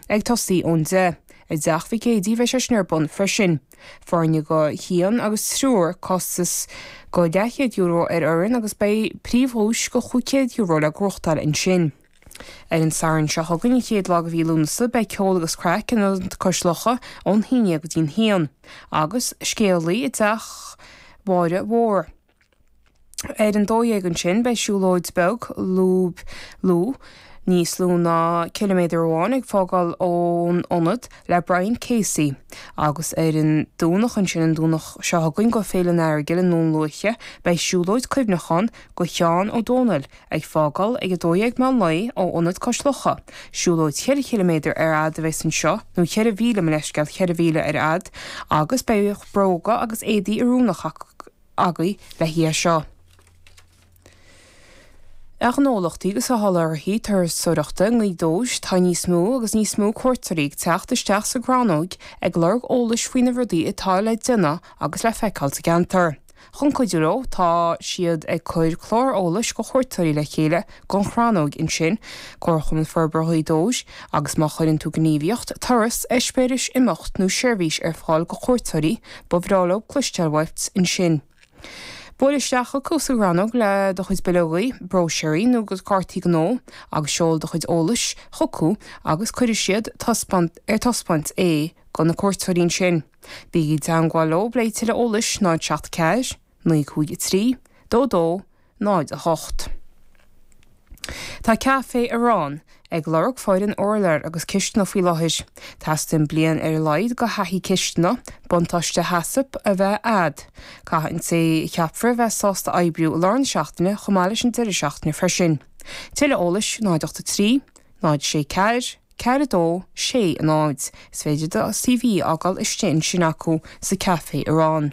ag tosaí ón deich. I dteach Mhicí Éadaí bheidh sé sin ar bun freisin. Foirne go haon agus triúr, costas go €200 ar fhoireann agus beidh príomhdhuais go €500 le gnóchtáil ansin. Ar an Satharn seo chugainn, an chéad lá de mhí Lúnasa, beidh ceol agus craic in Ionad Cois Locha ón haon dhéag go dtí an haon. Agus scéalaí i dteach Mháire Mhór. Ar an dó dhéag ansin beidh siúlóid beag, lúb lúth, níos lú ná ciliméadar amháin, ag fágáil ón ionad le Brian Casey. Agus ar an Domhnach ansin, an Domhnach seo chugainn, go Féile an Earagail i nDún Lúiche, beidh siúlóid cuimhneachán do Sheán Ó Domhnaill ag fágáil ag a dó dhéag meán lae ó Ionad Cois Locha. Siúlóid cheithre chiliméadar ar fhad a bheas anseo, nó cheithre mhíle, mo leithscéal, cheithre mhíle ar fhad, agus beidh bróga agus éadaí oiriúnach ag teastáil. uaibh le haghaidh seo. A ghnólachtaí agus a sholáthraithe turasóireachta Ghaoth Dobhair tá níos mó agus níos mó cuairteoirí ag teacht isteach sa gCrannóig ag lorg eolais faoi na rudaí atá le déanamh agus le feiceáil sa gceantar. Chun cuidiú leo tá siad ag cuir clár eolais do chuairteoirí le chéile Don Chrannóig ansin, Comharchumann Forbartha Ghaoth Dobhair, agus má chuireann tú gníomhaíocht, turas, eispéireas, imeacht nó seirbhís ar fáil go cuairteoirí, ba bhreá leo cloisteáil uait ansin. Buail isteach chucu sa gCrannóg le do chuid bileogaí, bróisirí nó cártaí gnó agus seol do chuid eolais chucu agus cuirfidh siad ar taispeáint é do na cuairteoirí ansin. Bígí i dteangmháil leo le tuilleadh eolais 074 naoi cúig a trí, dó a dó, náid a hocht. Tá Café Arán ag lorg foireann urláir agus cisteanadh faoi láthair. Teastaíonn bliain ar a laghad de thaithí cisteanadh, buntáiste HACCP a bheith a'd. Caithfidh an té a cheapfar a bheith sásta oibriú i lár na seachtaine chomh maith leis an deireadh seachtaine freisin. Tuilleadh eolais, náid ocht a trí, náid sé ceathair, ceathair a dó, sé a náid. Is féidir do CV a fhágáil istigh ansin acu sa Café Arán.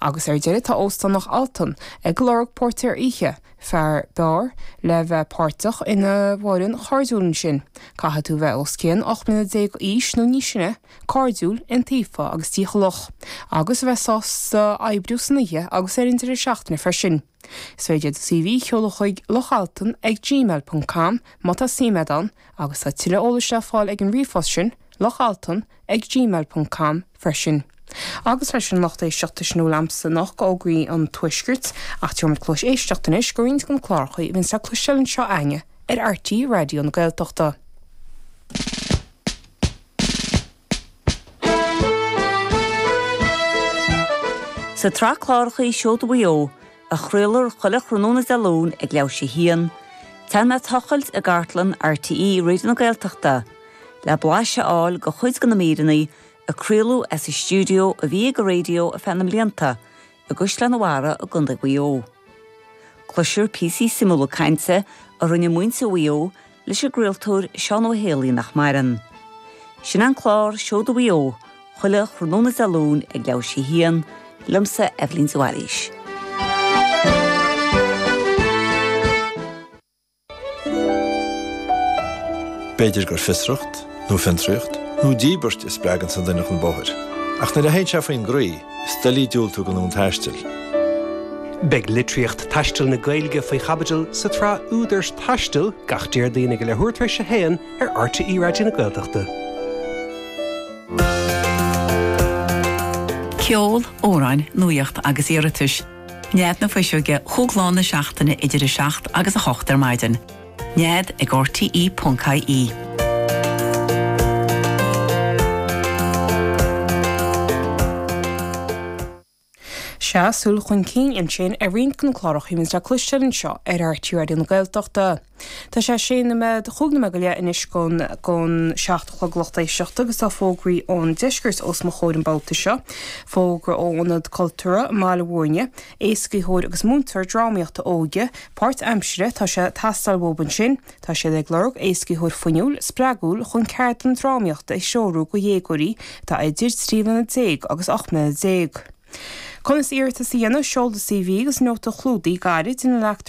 Agus ar deireadh tá Óstán Loch Altan ag lorg póirtéir oíche, fear beáir, le bheith páirteach ina bhfoireann chairdiúil ansin. Caithfidh tú bheith os cionn 18 mbliana d'aois nó níos sine, cairdiúil, iontaofa agus dícheallach. Agus a bheith sásta oibriú san oíche agus ar an deireadh seachtaine freisin. Is féidir do CV a sheoladh chuig lochaltan ag gmail ponc com má tá suim a'd ann agus tá tuilleadh eolais le fáil ag an ríomhphost sin, lochaltan ag gmail ponc com, freisin. Agus leis sin a lucht éisteachta sin a bhfuil a'msa anocht de fhógraí an Tuaiscirt, ach tabharfaidh muid cluais éisteachta anois do roinnt de na cláracha a bhíonns le cloisteáil anseo againne ar RTÉ Raidió na Gaeltachta. Sa tsraith cláracha Seoda Mhaigh Eo, a chraolfar chuile thráthnóna Dé Luain ag leathuair tar éis a haon, téann mé ag tochailt i gcartlann RTÉ Raidió na Gaeltachta le blais a fháil de chuid de na míreanna a craoladh as an stiúideo a bhí ag an raidió ar feadh na mblianta i gCaisleán an Bharraigh i gContae Mhaigh Eo. Cloisfear píosaí suimiúla cainte a rinne muintir Mhaigh Eo leis an gcraoltóir Seán Ó hÉalaí nach maireann. Sin an clár Seoda Mhaigh Eo chuile thráthnóna Dé Luain ag leathuair tar éis a haon, liomsa, Eibhlín de Bhailís. B'fhéidir gur fiosracht, nó fiontraíocht, nó díbirt a spreaganns an duine chun bóthair, ach nuair a théann sé faoin gcroí, is doiligh diúltú gon fhonn taistil. Beidh litríocht taistil na Gaeilge faoi chaibidil sa tsraith Údair Taistil gach Déardaoin ag a leathuair tar éis a haon ar RTÉ Raidió na Gaeltachta. Ceol, amhráin, nuaíocht agus iarratais. Nead na Fuiseoige chúig lá na seachtaine idir 7 agus 8 ar maidin. Nead ag RTE.ie. Sea, súil chun cinn ansin ar roinnt de na cláracha a bhíonns le cloisteáil anseo ar RTÉ Raidió na Gaeltachta. Tá sé sé noiméad, chúig noiméad go leith anois gon seacht a chlog lucht éisteachta agus tá fógraí ón deisceart os mo chomhair an babhta seo. Fógra ó Ionad Cultúrtha i mBaile Mhúirne, Éascaítheoir agus múinteoir drámaíochta óige páirt aimsire tá sé ag teastáil uathub ansin. Tá siad ag lorg éascaítheoir fuinniúil, spreagúil chun ceardlann drámaíochta a threorú go dhéagóirí atá idir trí bliana déag agus ocht mbliana déag. Conas iarratas a dhéanamh, Seol do CV agus nóta clúdaigh gairid ina leagtar